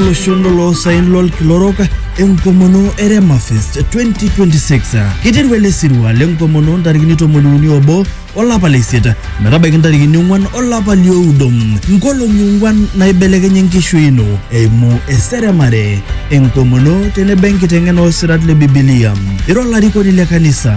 olosho lolo saen lolkila orok enkomono e Rema Fest 2026. Kiteru ele sirua lenkomono ntarikini tomoni uni obo olapa le isiet metabaiki ntarikini ong'wan olapa lioudo nkolong'i ong'wan naibelekenye enkishui ino eimu eseremare enkomono tenebo enkiteng'ena oosirat le bibilia ira olarikoni le kanisa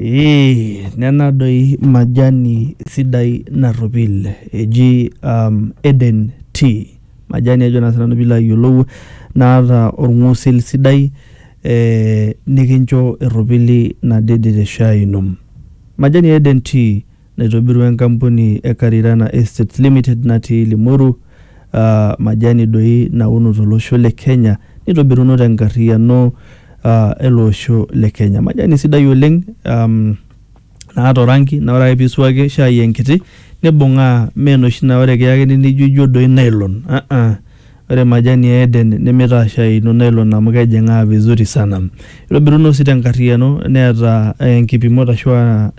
Ee nena doi majani sidai narropil eji Eden tea. Majani ajo naa sinanu pilo ayiolou naata orng'usil sidai, nikincho erropili nadede teshai ino. Majani e Eden tea. naitobirua enkampuni e Karirana Estates Limited natii Limoru uh, majani doi nauno tolosho le Kenya nitobiruno tenkarriyiano uh, ele osho le Kenya. Majani sidai oleng um, naata orangi na ore ake pisuaki shai enkiti nibung'aa mee noshi naa ore kiyakini nijo ijo doi nylon uh -uh. Ore majani e Eden nemeitashaikino nylon amu kejing'aa vizuri sana. Eitobiruno sii tenkarriyiano neeta nkipimot ashu aa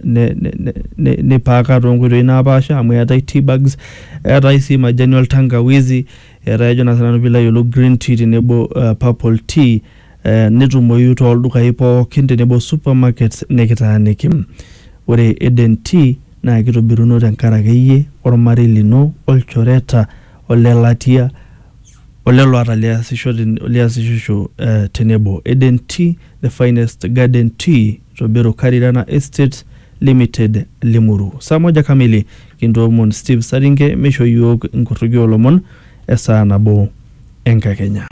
neipaaka toonkoitoi napaasha amu eetai tea bags, eetai sii majani oltangawizi, eetai ajo naa sii nanu piilo ayiolou green tea tenebo o purple tea netumoyu tooldukai pooki tenebo o supermarkets nikitaaniki. Ore Eden Tea naa keitobiruno tenkaraki iyie, olmarei lino, olchoreta o le latia, o lelo ata liasishisho te nebo. Eden Tea, the finest garden tea to Beru Karirana Estates Limited, Limuru. Saa moja kamili, kintoomon Steve Saringe meishoo iyiook inkorroki oo lomon e saa nabo e nkakenya.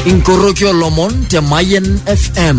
Inkorroki oo lomon te Mayian FM.